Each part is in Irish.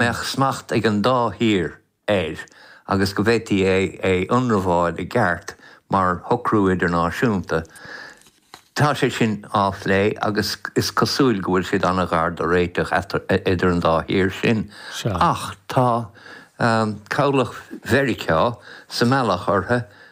mbeadh smacht ag an dá thír air agus go bhféadfaí é a ionramháil i gceart mar shocrú idirnáisiúnta. Tá sé sin á phlé agus is cosúil go bhfuil siad an-ghar do réiteach idir an dá thír sin. Ach tá cabhlach Mheiriceá sa mbealach orthu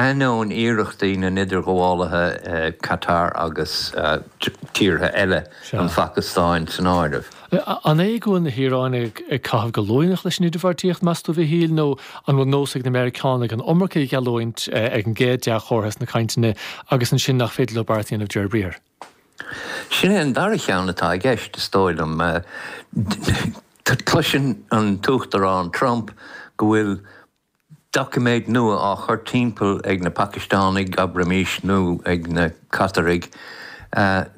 Ainneoin iarrachtaí na n-idirghabhálaithe, Catar agus tíortha eile, an Phacastáin san áireamh, An é go bhfuil na hIaráinigh ag caitheamh go luaineach leis an idirbheartaíocht, meas tú, Mhíchíl, nó an bhfuil nós ag na Meiriceánaigh an iomarca a gheallúint ag an gcéad dea-chomhartha sna cainteanna agus ansin nach féidir leo beart a dhéanamh de réir briathair? Sin an dara cheann atá i gceist, is dóigh liom. Cloiseann an tUachtarán Trump go bhfuil Doiciméad nua á chur timpeall ag na Pacistánaigh, abraimis, nó ag na Cataraigh,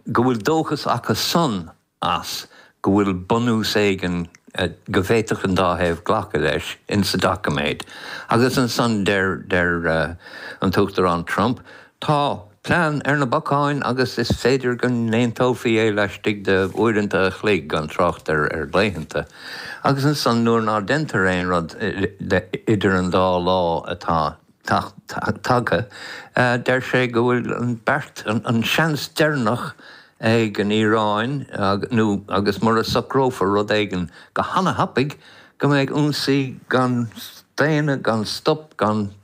go bhfuil dóchas acu san as, go bhfuil bunús éigin, go bhféadfadh an dá thaobh glacadh leis, ins sa doiciméad. Agus ansan deir an tUachtarán Trump, tá. plean ar na bacáin agus is féidir go n-aontófaí é laistigh de uaireanta a chloig, gan trácht ar laethanta. Agus ansan nuair ná deintear aon rud idir an dá lá atá tagtha, deir sé go bhfuil an beart, an seans deireanach ag an Iaráin nó agus mura socrófar rud éigin go hana-thapaidh, go mbeidh ionsaí gan staonadh, gan stop, gan.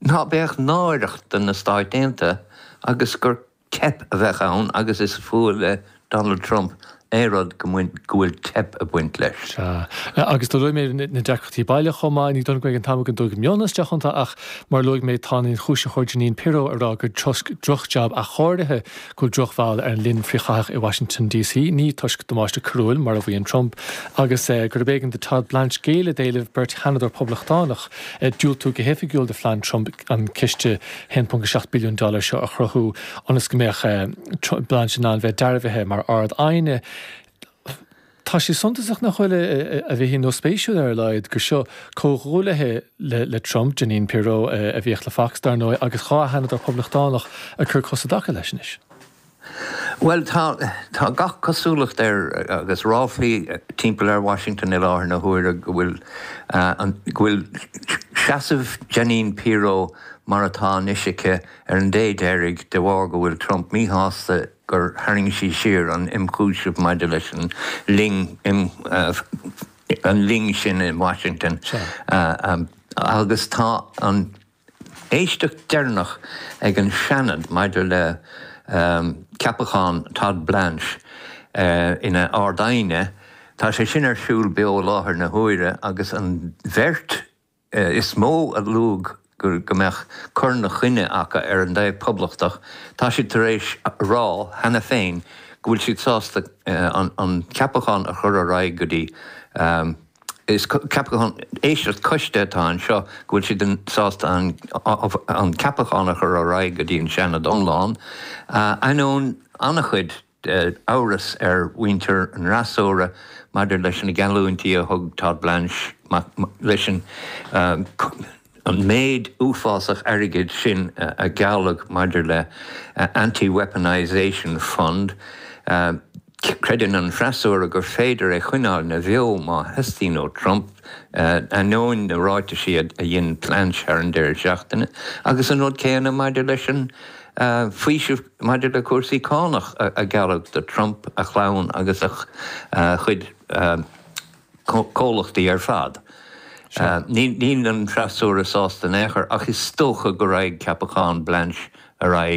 ná beadh náireach do na Stáit Aontaithe agus gur teip a bheadh ann agus is fuath le Donald Trump aon rud go bhfuil teip ag baint leis. Sea. Agus do luaigh mé na deacrachtaí baile chomh maith. Ní dóigh liom go mbeidh an t-am againn dul go mion isteach iontu ach, mar a luaigh mé, tá an ionchúisitheoir Jeanine Pirro ag rá gur toisc drochjab athchóirithe go bhfuil drochbhail ar an linn frithchaithach i Washington DC, ní toisc damáiste coiriúil, mar a mhaíonn Trump, agus gurb éigean do Todd Blanche géilleadh d'éileamh beirt sheanadóir Poblachtánach diúltú go hoifigiúil do phlean Trump an ciste 1.7 billiún dollar seo a chruthú ionas go mbeadh Blanche in ann bheith dearbhaithe mar Ard-Aighne Tá sé suntasach nach bhfuil, a Mhíchíl, nó spéisiúil ar a laghad, gur seo comhghuaillithe le Trump, Jeanine Pirro, a bhíodh le Fox, dar ndóigh, agus dhá sheanadóir Poblachtánach ag cur cos i dtaca leis anois. Bhuel, tá, tá gach cosúlacht air, agus ráflaí timpeall ar Washington i láthair na huaire, go bhfuil, go bhfuil seasamh Jeanine Pirro mar atá anois aici ar an dé deiridh de bharr go bhfuil Trump míshásta gur tharraing sí siar an ionchúiseamh maidir leis an linn sin in Washington agus tá an éisteacht deireanach ag an Seanad maidir le ceapachán Todd Blanche ina Ard-Aighne, tá sé sin ar siúl beo i láthair na huaire agus an bheirt. is mó a luaigh go mbeadh cur ina choinne acu ar an taobh Poblachtach, tá siad tar éis a rá cheana féin go bhfuil siad sásta an ceapachán a chur ar aghaidh go dtí Is ceapachán éisteacht coiste atá anseo go bhfuil siad sásta an ceapachán a chur ar aghaidh go dtí an Seanad iomlán, ainneoin an-chuid amhras ar mhuintir an fhreasúra maidir leis na geallúintí a thug Todd Blanche leis an méid uafásach airgid sin a gealladh maidir le Anti-Weaponisation Fund. Creideann an freasúra gur féidir é a choinneáil ina bheo má theastaíonn ó Trump, ainneoin na ráitisí a dhein Blanche thar an deireadh seachtaine, agus an rud céanna maidir leis an bhfaoiseamh. Maidir le cúrsaí cánach a gealladh do Trump, a chlann agus a chuid comhlachtaí ar fad, níl an freasúra sásta in aon chor ach is dócha go raghaidh ceapachán Blanche ar aghaidh.